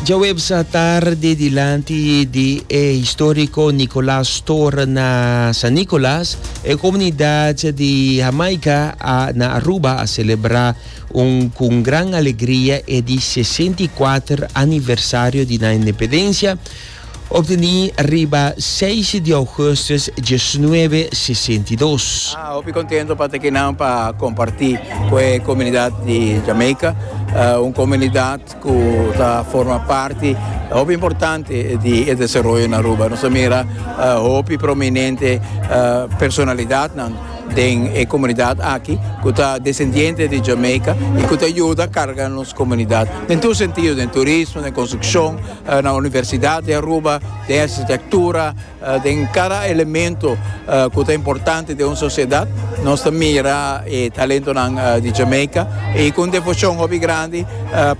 Djaweps atardi dilanti di e historico Nicolas Store na San Nicolas, e comunidad di Jamaica a na Aruba a celebra un cu gran alegria e di sesenta i kuater aniversario di nan independencia. Obteni riba seis di augustus diesnuebe sesenta i dos. A hopi contento pa ta aki nan pa comparti cu e comunidad di Jamaica, un comunidad cu ta forma parti hopi importante di e desaroyo na Aruba. Nos a mira hopi prominente personalidadnan den e comunidad aki cu ta descendiente di Jamaica y cu ta yuda carga nos comunidad den tur sentido, den turismo, den construccion. Na Universidad di Aruba den architectura, den cada elemento cu ta importante den un sociedad nos ta mira e talentonan di Jamaica y con devocion hopi grandi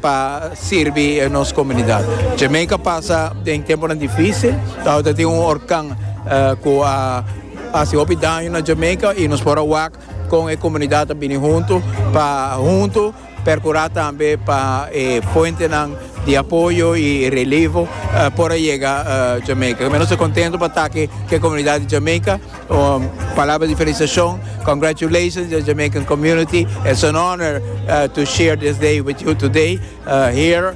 pa sirbi nos comunidad. Jamaica pasa den temponan dificil, awor tin un horcan cu a haci hopi daño na Jamaica y nos por a wak con e comunidad ta bini hunto pa hunto. Percura tambe pa e fuentenan di apoyo y relevo por a yega Jamaica. Nos ta contento pa taki cu e comunidad di Jamaica. Palabra di felicitacion. Congratulations the Jamaican community. It's an honor to share this day with you today here.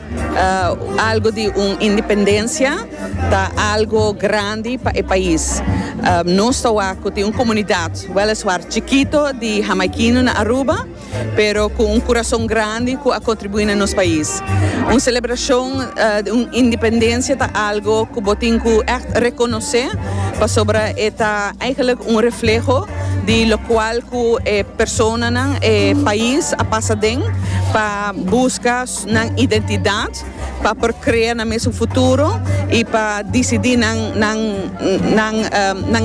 Algo di un independencia ta algo grandi pa e pais. Nos ta wak cu tin un comunidad, weliswaar chikito, di Hamaikino na Aruba, pero cu un curason grandi cu a contribui na nos pais. Un celebracion di un independencia ta algo cu bo tin cu echt reconoce, pasobra e ta eigenlijk un refleho di locual cu e personanan, e pais a pasa den pa busca. nan identidad pa por crea nan mes un futuro y pa dicidi nan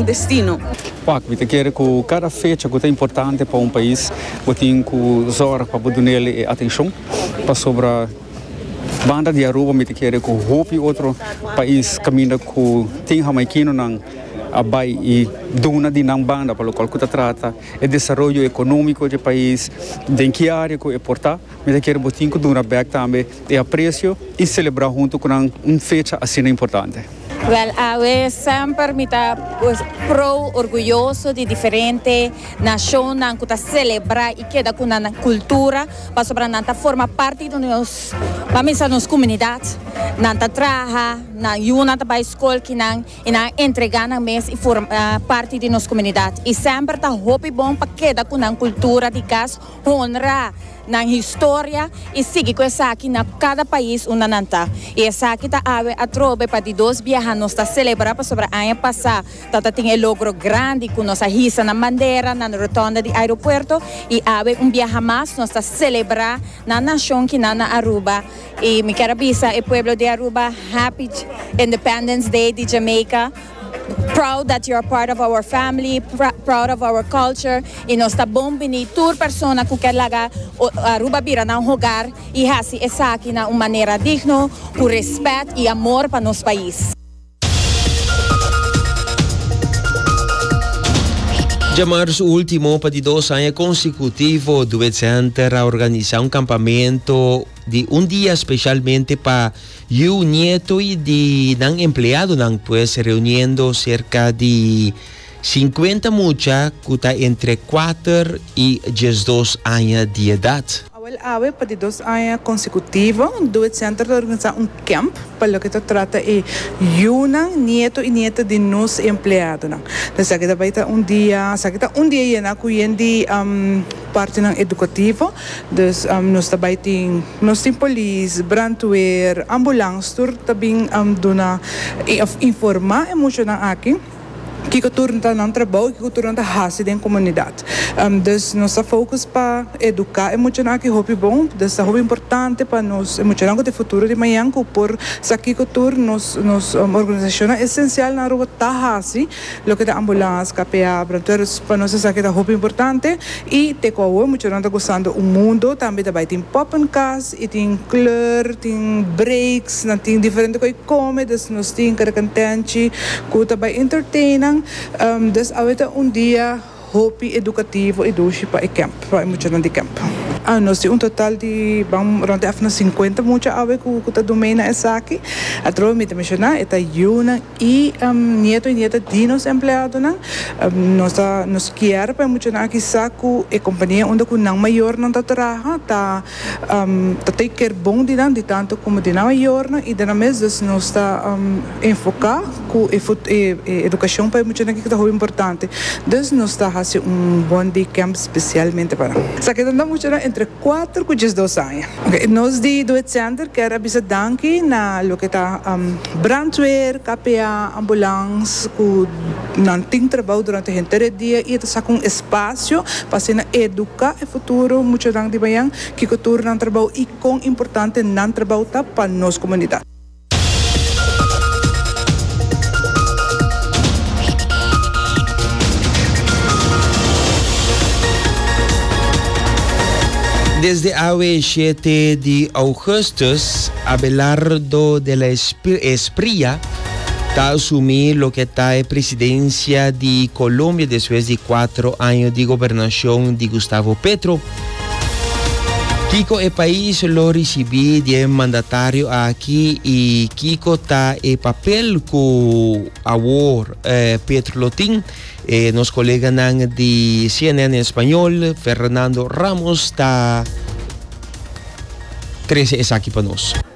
destino. Wak, mi ta kere cu cada fecha cu ta importante pa un pais bo tin cu zorg pa bo dun'el e atencion, pasobra banda di Aruba mi ta kere cu hopi otro pais caminda cu tin Hamaikinonan a bay y duna di nan banda pa locual cu ta trata e desaroyo economico dje pais, den ki area cu e por ta. Mi ta kere botin ku duna bèk tambe e apresio i selebrá huntu ku nan un fecha asina importante. Wèl, awe semper mi ta prou orguyoso di diferente nashonnan ku ta selebrá i keda ku nan kultura pasobra nan ta forma parti di nos pamesa nos komunidat. Nan ta traha, nan yunan ta bai skol kinan i nan a entregá nan mes i forma parti di nos komunidat. I semper ta hopi bon pa keda ku nan kultura di kas. honra nan historia y sigui cu esaki na cada pais unda nan ta. Y esaki ta awe atrobe pa di dos biaha nos ta celebra pasobra aña pasa ta ta tin e logro grandi cu nos a hisa nan bandera na rotonda di aeropuerto y awe un biaha mas nos ta celebra nan nacion ki nan na Aruba y mi kier a bisa e pueblo di Aruba happy Independence Day di Jamaica. Proud that you are part of our family, proud of our culture y nos ta bon bini tur persona cu kier laga Aruba bira nan hogar y haci esaki na un manera digno, cu respet y amor pa nos pais. Dje mars ultimo, pa di dos aña consecutivo, Duet Center a organisa un campamento di un dia specialmente pa Yu nieto y di nan empleadonan pues reuniendo cerca di cincuenta mucha cu ta entre cuater y diesdos aña di edad. Awel awe pa di dos aña consecutivo Do It Center ta organisa un camp pa loke ta trata e yunan, nieto y nieta di nos empleadonan. Esaki ta bay ta un dia, esaki ta un dia yena cu yen di. Partinan edukativo, dus nos ta bai tin, nos tin polis, brandweer, ambulans tur ta bin duna of informá e muchanan aki kiko tur ta nan trabou i kiko tur nan ta hasi den komunidat. Dus nos ta fokus pa eduká e muchanan aki hopi bon, dus ta hopi importante pa nos e muchanan ku ta e futuro di mañan ku por sa kiko tur nos nos organisashonnan esensial nan aruba ta hasi. Loke ta ambulans, kapea, bronteurs pa nos esaki ta hopi importante y te ku awo muchanan ta gozando un mundo tambe ta bai tin poppenkas y tin kleur, tin breaks, nan tin diferente koe kome des nos tin kada kantenchi ku ta bai entertain nan, des awe ta un dia. Hopi edukativo e dushi pa e kemp, pa e muchanan di kemp. Nos tin un total di ban rònt èf na sinkuenta mucha awe ku ta dun mei na esaki. Atrobe mi ta menshoná e ta yunan i nieto i nieta di nos empleadonan. Nos ta nos kier pa e muchanan aki sa ku e kompania unda ku nan mayornan ta traha ta. Ta t'e ker bon di nan, di tantu komo di nan mayornan, i den nan mes dus nos ta enfoká ku e e edukashon pa e muchanan aki ku ta hopi importante. Dus nos ta hasi un One Day Camp spesialmente pa nan. Esaki ta na muchanan entre kuater ku diesdos aña. Nos di Doe Center ker a bisa danki na loke ta brandweer, KPA, ambulans ku. Nan tin trabao durante henter e dia y e ta saca un espacio pa asina educa e futuro muchanan di Bayan kico tur nan trabao y con importante nan trabao ta pa nos comunidad. Desde awe shete di augustus Abelardo de la Espria. Ta asumí loke ta e presidencia di Colombia despues di cuatro año di gobernacion di Gustavo Petro. Kico e pais lo ricibí di e mandatario aki y kico ta e papel cu awor Petro lo tin? E nos coleganan di cnn Español, Fernando Ramos ta trece esaki pa nos.